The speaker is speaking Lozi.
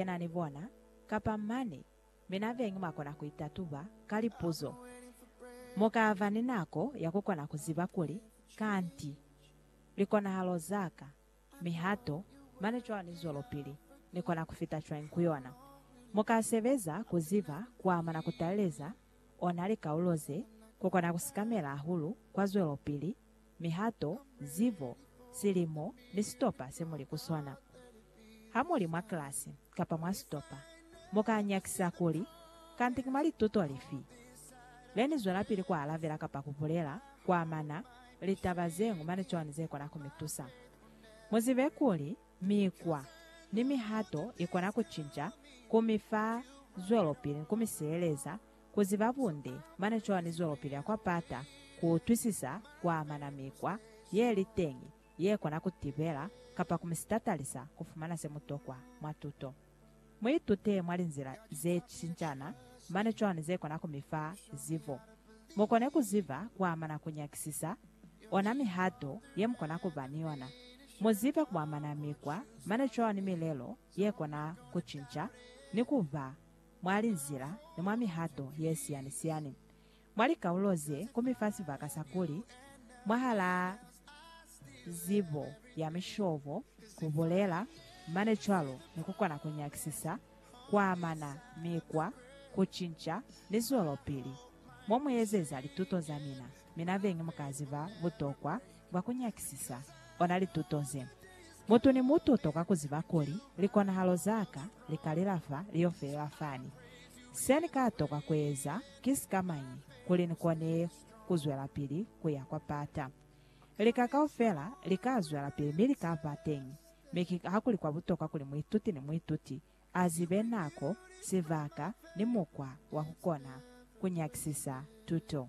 yena ni bona, kapa mane, mi na beñi mwa kona ku itatuba ka lipuzo. Mu ka ba ni nako ya ku kona ku ziba kuli, Kanti, likonahalo za ka, mihato, mane cwalo ni zwelopili, ni kona ku fita cwañi ku yona? Mu ka sebeza ku ziba ku amana ku taleleza ona likaulo ze, ku kona ku sikamela hahulu kwa zwelopili mihato, zibo, silimo, ni sitopa se muli ku sona. Ha muli mwa klasi kapa mwa sitopa, mu ka nyakisa kuli, Kanti ki mwa lituto lifi le ni zwelapili ku alabela kapa ku bulela ku amana li taba ze ñwi mane cwani ze kona ku mi tusa? Mu zibe kuli, mikwa ni mihato i kona ku cinca, ku mi fa zwelopili ni ku mi sieleza ku ziba bunde, mane cwalo ni zwelopili ya kwa pata, ku utwisisa, ku amana mikwa ye li teñi ye kona ku tibela kapa ku mi sitatalisa ku fumana se mu tokwa mwa tuto. Mu itute mwa linzila ze cincana, mane cwalo ni ze kona ku mi fa zibo. Mu kone ku ziba ku amana ku nyakisisa ona mihato ye mu kona ku ba ni yona. Mu zibe ku amana mikwa, mane cwalo ni milelo ye kona ku cinca ni ku ba mwa linzila ni mwa mihato ye siyani-siyani mwa likaulo ze kumi fa sibaka sa kuli, mwahalaa zibo ya mishobo, ku bulela mane cwalo ni ku kona ku nyakisisa, ku amana mikwa, ku cinca, ni zwelopili. Mo mu ezeza lituto za mina, mina beñi mu ka ziba butokwa Mwa ku nyakisisa ona lituto ze, mutu ni mutu u tokwa ku ziba kuli, Likonahalo za ka li ka lela fa li yo felela fani. Se ni ka tokwa ku eza ki sikamañi kuli ni kone ku zwelapili ku ya kwa pata? Lika kaufela li ka zwelapili mi li ka ba teñi, mi ki ha kuli kwa butokwa kuli muituti ni muituti a zibe nako, sibaka, ni mukwa wa ku kona ku nyakisisa tuto.